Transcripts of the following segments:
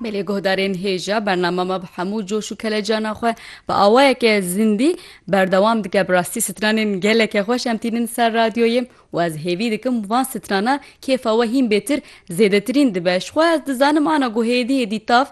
Belê guhdarên hêja bernama me bi hemû coş û kelecana xwe bi awayeke zindî berdewam dike bi rastî stranên geleke xweş em tînin ser radyoyê û ez hêvî dikim van strana kêfa we hîn bêtir zêdetirîn dibe ji xwe ez dizanim ana ku hêdî hêdî tav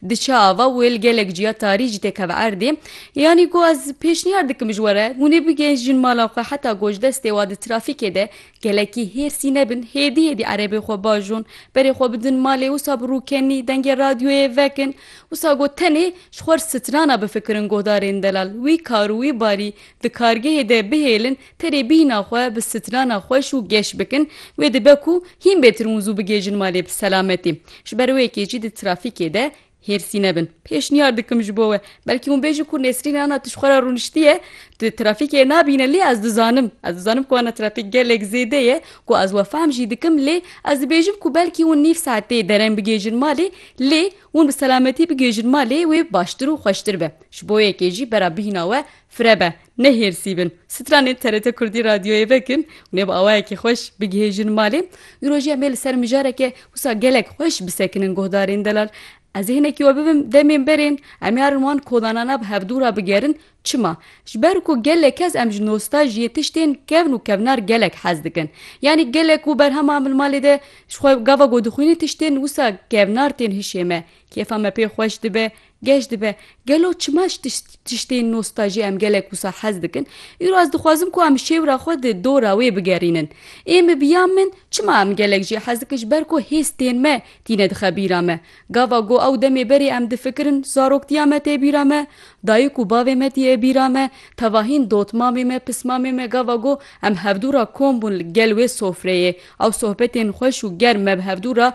diçe ava wêl gelek ciya tarî jî têkeve erdê yanî ku ez pêşniyar dikim ji were hûnê bigêjin mala xwe heta ku ji destê wa di trafîkê de Gelekî hêrsî nebin, hêdî hêdî erebê xwe bajon, berê xwe bidin malê, wisa bi rûkenî dengê radyoyê vekin. Wisa got tenê ji xwe re strana bifikirin guhdarên delal, wî kar û wî barî di kargehê de bihêlin, tenê bîhna xwe bi strana xweş û geş bikin, wê dibe ku hîn bêtirmûzû bigihêjin malê bi selametî. Ji ber wê yekê jî di trafîkê de Hêrsî nebin. Pêşniyar dikim ji bo we. Belkî hûn bêjin ku Nesrîn ana tu ji xwe re rûniştiye, tu trafîkê nabîne lê ez dizanim. Ez dizanim ku ana trafîk gelek zêde ye, ku ez we fehm jî dikim lê ez dibêjim ku belkî hûn nîv saetê dereng bigihêjin malê lê hûn bi selametî bigihêjin malê wê baştir û xweştir be. Ji bo yekê jî bera bihîna we firebe. Nehêrsî bin, stranên TRT Kurdî radyoyê vekin û nê bi awayekî xweş bigihêjin malê. Îro jî em ê li ser mijareke wisa gelek xweş bisekinin guhdarên delal. Ez ê hinekî we bibim demên berên em ê herin wan kodanana bi hevdû re bigerin. Çima? Ji ber ku gelek kes em ji nostajiyê tiştên kevn û kevnar gelek hez dikin. Yanî gelek ku berhema min malê de ji xwe gava ku dixwînin tiştên wisa kevnar tên hişê me. Kêfa me pê xweş dibe. Geş dibe, gelo çima ji tiştên nostajî em gelek wisa hez dikin? Îro ez dixwazim ku em şêwra xwe di dora wê bigerînin. Ê min biya min çima em gelek jî hez dikin ji ber ku hêstên me tîne dixe bîra me. Gava ku ew demê berê em difikirin zaroktiya me tê bîra me, dayik û bavê me tîye bîra me, tevahîn dotmamê me, pismamê me gava ku em hevdû ra kom bûn li gel wê sofreyê, Ew sohbetên xweş û germ me bi hevdû re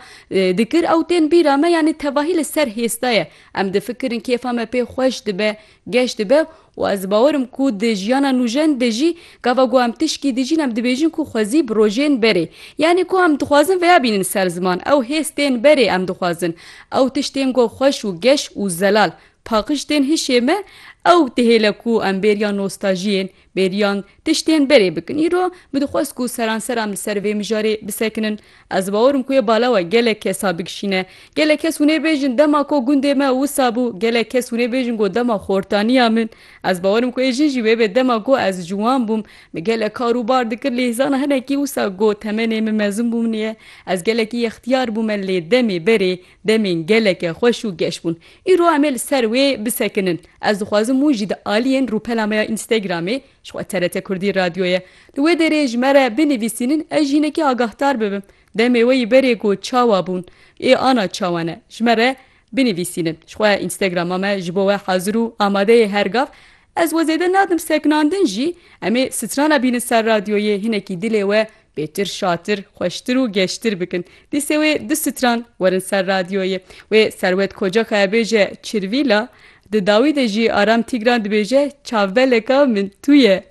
dikir, ew tên bîra me yanî tevahî li ser hêz de ye. Em difikirin kêfa me pê xweş dibe, geş dibe û ez bawer im ku di jiyana nûjen de jî gava ku em tişkî dijîn em dibêjin ku xwezî bi rojên berê. Yanî ku em dixwazin veya bînin ser ziman. Ew hêz tên berê em dixwazin. Ew tişt tên ku xweş û geş û zelal. Paqij tên hişê me, ew dihêle ku em bêriya nostajiyên. Bêriyan, Tiştên berê bikin. Îro min dixwest ku seranseran li ser vê mijarê bisekinin. Ez bawer im ku yê bala we gelek kesa bigişîne. Gelek kes hûnê bêjin dema ku gundê me wisa bû, gelek kes hûnê bêjin ku dema xortaniya min. Ez bawer im ku yê jin jî wê bê dema ku ez ciwan bûm. Min gelek kar û bar dikir lê zana hinekî wisa ku temenê min mezin bûm niye. Ez gelekî yextiyar bûme lê demê berê Demên geleke xweş û geş bûn. Îro em ê li ser wê bisekinin. Ez dixwazim wan jî di aliyên rûpela me ya Instagramê, ji xwe TRT Kurdî radyo ye, li wê derê ji me re binivîsînin ez jî hinekî agahdar bibim. Demê wê yî berê ku çawa bûn, ê ana çawa ne, ji me re binivîsînin. Ji xwe Instagrama me ji bo we hazir û amade ye her gav. Ez we zêde nadim seknandin jî, em ê strana bînin ser radyoyê hinekî dilê we bêtir şatir, xweştir û geştir bikin. Dîsê wê du stran werin ser radyoyê. Wê Serwet Kocakaya bêje Çirvîla, di dawî de jî Aram Tîgran dibêje Çavbeleka min tu ye.